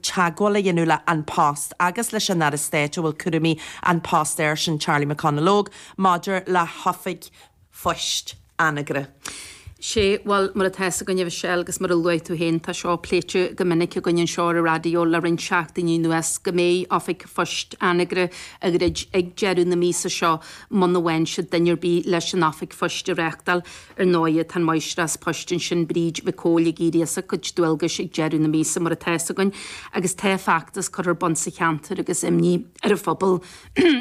teagmháil a dhéanamh le An Post agus leis an Aire Stáit a bhfuil cúraimí An Post air sin, Charlie McConalogue, maidir le hoifig phoist Anagaire. Sé, bhuel, mar atá fhios againn a Mhichelle, agus mar a luaigh tú féin, tá seo pléite go minic againn anseo ar an raidió le roinnt seachtainí anuas, go mbeidh oifig phoist Anagaire á dhruid ag deireadh na míosa seo muna bhfaigheann siad duine ar bith leis an oifig phoist a reachtáil. Ar ndóighe, tá an Máistreás poist ansin, Bríd Mhic Cumhaill, ag éirí as a cuid dualgais ag deireadh na míosa, mar atá fhios againn, agus tá feachtas curtha ar bun sa cheantar agus imní ar an phobal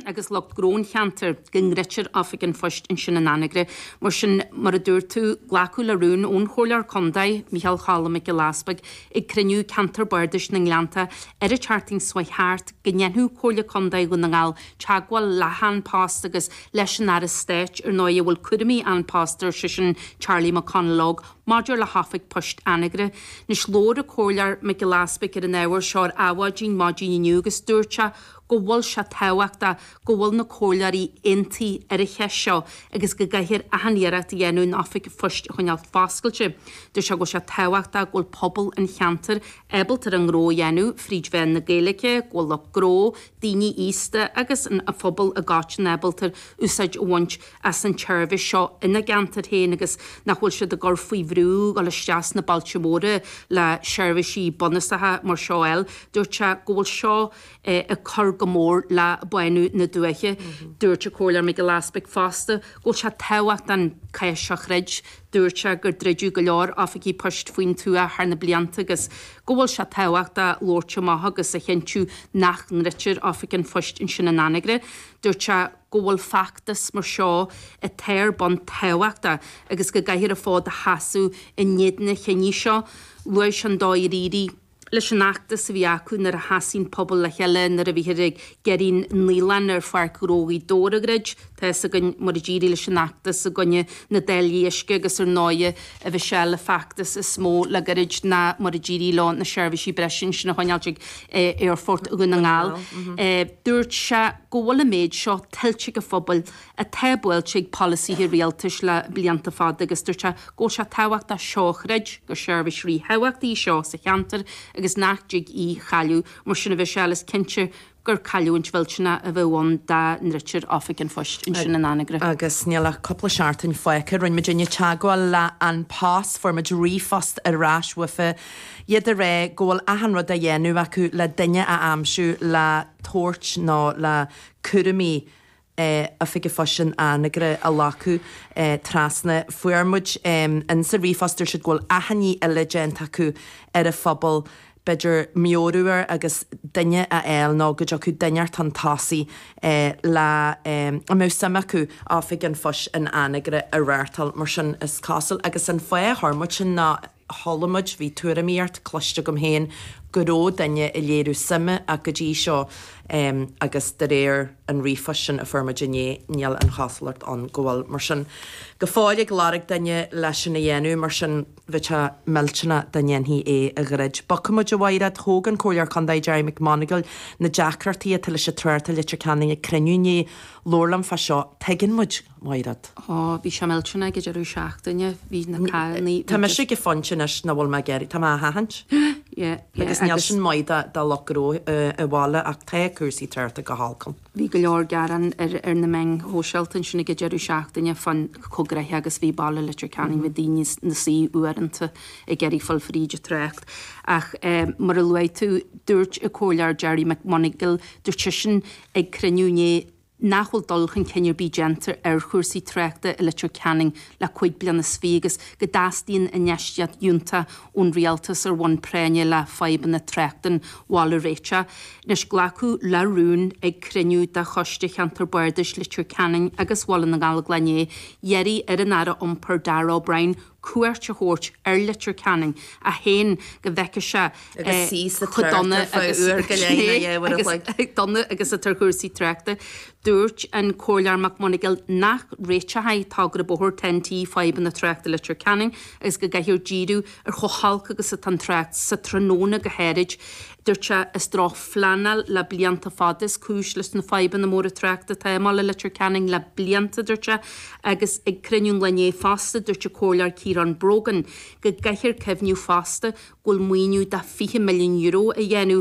agus lucht gnó an cheantair go ndruidfear Oifig an Phoist ansin in Anagaire. Mar sin, mar a dúirt tú, glacadh le rún ón Chomhairleoir Contae, Micheál Choilm Mac Giolla Easbuig, ag cruinniú Ceantar Bardais na nGleannta ar an tseachtain seo chuaigh thart, go ndéanfadh Comhairle Contae Dhún na nGall teagmháil le hAn Post agus leis an Aire Stáit, ar ndóigh, a bhfuil cúraimí An Post air, sé sin Charlie McConalogue, maidir le hoifig poist Anagaire. Anois, labhair an Comhairleoir Mac Giolla Easbuig ar an ábhar seo ar Adhmhaidin maidin inniu agus dúirt sé go bhfuil sé tábhachtach go bhfuil na Comhairleoirí aontaithe ar an cheist seo agus go gcaithfear achan iarracht a dhéanamh an oifig phoist a choinneáil foscailte. Dúirt sé go bhfuil sé tábhachtach go bhfuil pobal an cheantair ábalta a ngnó a dhéanamh fríd mheán na Gaeilge, go bhfuil lucht gnó, daoine aosta agus an phobal i gcoitinne ábalta úsáid a bhaint as an tseirbhís seo ina gceantair féin agus nach bhfuil siad á gcur faoi bhrú dul isteach sna bailte móra le seirbhísí bunúsacha mar seo a fháil. Dúirt sé go bhfuil seo ag cur go mór le bánú na dúiche. Dúirt an Comhairleoir Mac Giolla Easbuig fosta go bhfuil sé tábhachtach an cath seo a throid Dúirt sé gur druideadh go leor oifigí poist faoin tuath thar na blianta agus go bhfuil sé tábhachtach labhairt amach agus a chinntiú nach ndruidtear oifig an phoist ansin in Anagaire. Dúirt sé go bhfuil feachtas mar seo atá ar bun tábhachtach agus go gcaithfear an fód a sheasamh in éadan an chinnidh seo. Luaigh sé an dóigh ar éirigh leis an fheachtas a bhí acu nuair a sheasaigh an pobal le chéile nuair a bhíthear ag iarraidh an naíolann ar Pháirc Ghnó Ghaoth Dobhair a dhruid, tá fhios againn mar a d'éirigh leis an fheachtas i gcoinne na dtáillí uisce agus ar ndóigh a Mhichelle, an feachtas is mó le goirid ná mar a d'éirigh leo na seirbhísí breise ansin a choinneáilt ag Aerfort Dhún na nGall. Dúirt sé go bhfuil an méid seo tuillte ag an phobal atá buailte ag polasaithe rialtais le blianta fada agus dúirt sé go bhfuil sé tábhachtach seo a throid, gur seirbhís ríthábhachtach í seo sa cheantar agus nach dtig í chailleadh, mar sin a Mhichelle, is cinnte gur cailliúint mhillteanach a bheadh ann dá ndruidtear Oifig an Phoist ansin in Anagaire. Agus níl ach cúpla seachtain fágtha, rinne muidinne teagmháil le An Post, fuair muid ríomhphost ar ais uafa, iad a rá go bhfuil achan rud á dhéanamh acu le duine a aimsiú le tabhairt nó le cúraimí a oifig an phoist in Anagaire a laghdú trasna. Fuair muid ins an ríomhphost ar siúd go bhfuil achainí eile déanta acu ar an phobal b'fhéidir meabhrú orthu agus duine a fháil nó go dtiocfadh duine chun tosaigh a mbeadh suim acu oifig an phoist in Anagaire a reáchtáil mar sin is cosúil agus an fáth a chuir muid sin ná chuala muid, bhí tuairimíocht cloiste agam féin, go raibh duine ag léiriú suime ach go dtí seo agus de réir an ríomhphoist sin a fuair muid inné, níl an chosúlacht ann go bhfuil. Mar sin, go fóill ag lorg duine le sin a dhéanamh. Mar sin. bheadh sé millteanach dá ndéanfaí é a dhruid. Bogfaidh muid ar aghaidh, a Mháiréad. Thóg an Comhairleoir Contae, Gerry Mac Maonghail, na deacrachtaí atá leis an trácht i Leitir Ceanainn ag cruinniú inné. Labhair linn fá seo. Tuigeann muid. Mairead. Ó, bhí sé millteanach ag an deireadh seachtaine, bhí na cairr, bhí. Tá mise ag fulaingt anois ná fuil mé ag éirí, tá mé á thathaint. Yeah, yeah, agus. Agus níl sin maith do lucht gnó i bhaile ach tá cúrsaí tráchta go holc ann. Bhí go leor gearán ar na meáin shóisialta ansin ag an deireadh seachtaine fá chomh gnoitheach agus bhí baile Leitir Ceanainn, bhí daoine na suí uaireanta ag iarraidh fáil fríd an trácht. Ach mar a luaigh tú, dúirt an Comhairleoir Gerry McMonagle, dúirt seisean ag cruinniú inné nach bhfuil dul chun cinn ar bith déanta ar chúrsaí tráchta i Leitir Ceanainn le cúig bliana is fiche agus go dteastaíonn infheistíocht fhiúntach ón Rialtas ar bhonn práinne le fadhbanna tráchta an bhaile a réiteach. Anois glacadh le rún ag cruinniú de Choiste Cheantar Bardais Leitir Ceanainn agus Bhaile na nGallóglach ag iarraidh ar an Aire Iompair Darragh O'Brien, cuairt a thabhairt ar Leitir Ceanainn, é féin go bhfeicfeadh sé Agus suí sa trácht ar feadh uair go leith nó dhá uair an chloig. chomh dona agus atá cúrsaí tráchta. Dúirt an Comhairleoir Mac Maonghail nach réiteochadh togra bóthair Ten T fadhbanna tráchta Leitir Ceanainn agus go gcaithfear díriú ar chomh holc agus atá an trácht sa tráthnóna go háirid. Dúirt sé, gur drochphleanáil le blianta fada is cúis leis na fadhbanna móra tráchta atá i mbaile Leitir Ceanainn le blianta, dúirt sé. Agus ag cruinniú an lae inné fosta, dúirt an Comhairleoir Ciarán Brogan go gcaithfear cuimhniú fosta go bhfuil maoiniú de €20 milliún á dhéanamh,